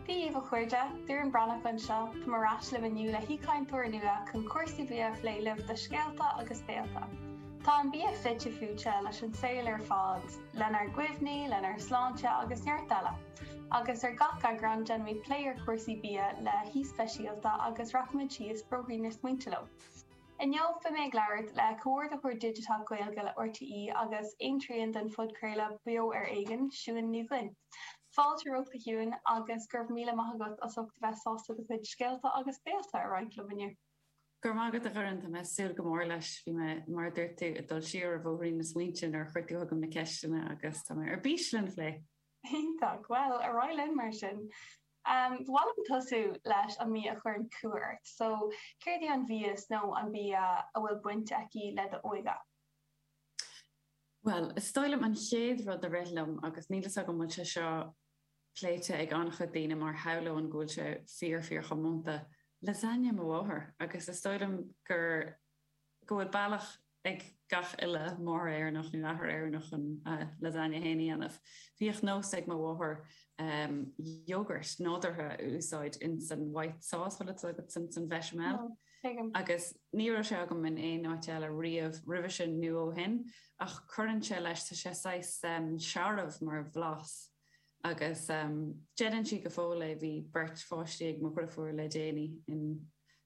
Dé daoibh a chairde, Doireann Breathnach anseo, táim ar ais libh inniu le haoichainteoir nua chun cúrsaí bia a phlé libh do Scéalta agus Béilte. Tá an bia fite fuaite leis an saol ar fad, lenár gcuimhní, lenár sláinte agus neart eile. Agus ar gach eagrán déanaimid plé ar chúrsaí bia le haoi speisialta agus rachaimid síos bóithrín na smaointe leo. Inniu beidh mé ag labhairt le Comhordaitheoir Digiteach Gaeilge le RTÉ agus aon trian den phodchraoladh Beo Ar Éigean, Siún Ní Dhuinn. Fáilte romhat a Shiúin agus go raibh míle maith agat as ucht a bheith sásta do chuid scéalta agus béilte a roinnt liom inniu. Go raibh maith agat a Dhoireann, tá mé ag súil go mór leis. Bhí mé, mar a dúirt tú, ag dul siar ar bhóithrín na smaointe nuair a chuir tú chugam na ceisteanna agus tá mé ar bís lena phlé! Iontach! Bhuel, ar aghaidh linn mar sin! Ba mhaith liom tosú leis an mbia a chuireann cumha ort. So, céard í an mhias nó an bia a bhfuil baint aici le d'óige? Bhuel, is dóigh liom an chéad rud a rith liom, agus níl fhios agam bhfuil sé seo pléite ag an-chuid daoine mar shamhlóinn go bhfuil sé fíor fíor chomónta, lasagne mo mháthair. Agus is dóigh liom gur. go bhfuil bealach ag gach uile máthair Éireannach nó athair Éireannach chun a lasagne féin a dhéanamh. Bhíodh nós ag mo mháthair yogurt nádúrtha a úsáid in san white sauce bhfuil fhios agat, san san bhéchamel, agus ní raibh sé agam in aon áit eile riamh roimhe sin nó ó shin ach cuireann sé leis, tá sé saghas searbh mar bhlas. agus déanann sí go fóill é. Bhí beirt pháistí ag mo dhriofúr le déanaí in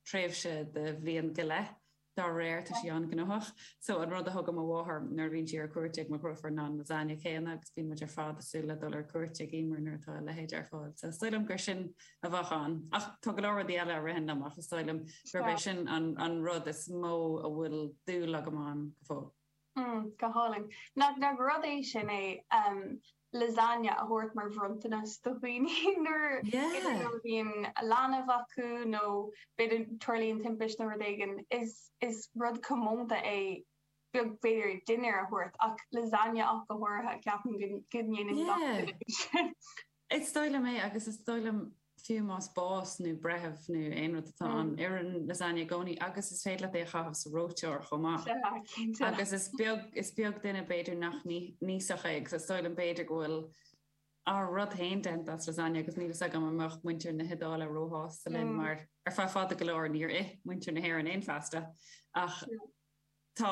tréimhse de bhliain go leith. Dá réir, tá sí an-ghnóthach. So, an rud a thugann mo mháthair nuair a bhíonn sí ar cuairt ag mo dhriofúr ná an lasagne céanna agus bíonn muid ar fad ag súil le dul ar cuairt ag Emer nuair atá a leithéid ar fáil. So, is dóigh liom gur sin a bheadh ann. Ach tá go leor rudaí eile a ritheann liom ach is dóigh liom gurb é sin an rud is mó a bhfuil dúil agam ann go fóill. Hmm, go hálainn. Nach nach rud é sin é, lasagne a thabhairt mar bhronntanas do dhaoine nuair, a bhíonn leanbh acu nó b'fhéidir tarlaíonn timpist nó rud éigin, is is rud comónta é b'fhéidir dinnéar a thabhairt ach lasagne ach go háirithe, ceapaim go ndéanann gach duine é sin. Is dóigh liom é agus is dóigh liom fiú más bás nó breith nó aon rud atá ann, oireann lasagne i gcónaí agus is féidir leat é a chaitheamh sa reoiteoir chomh maith. Sea, cinnte. Agus is beag, is beag duine b'fhéidir nach n-íosfadh é agus is dóigh liom b'fhéidir go bhfuil ár rud féin déanta as lasagne agus níl fhios agam an mbeadh muintir na hIodáile róshásta linn mar ar feadh fada go leor níor ith muintir na hÉireann aon phasta ach tá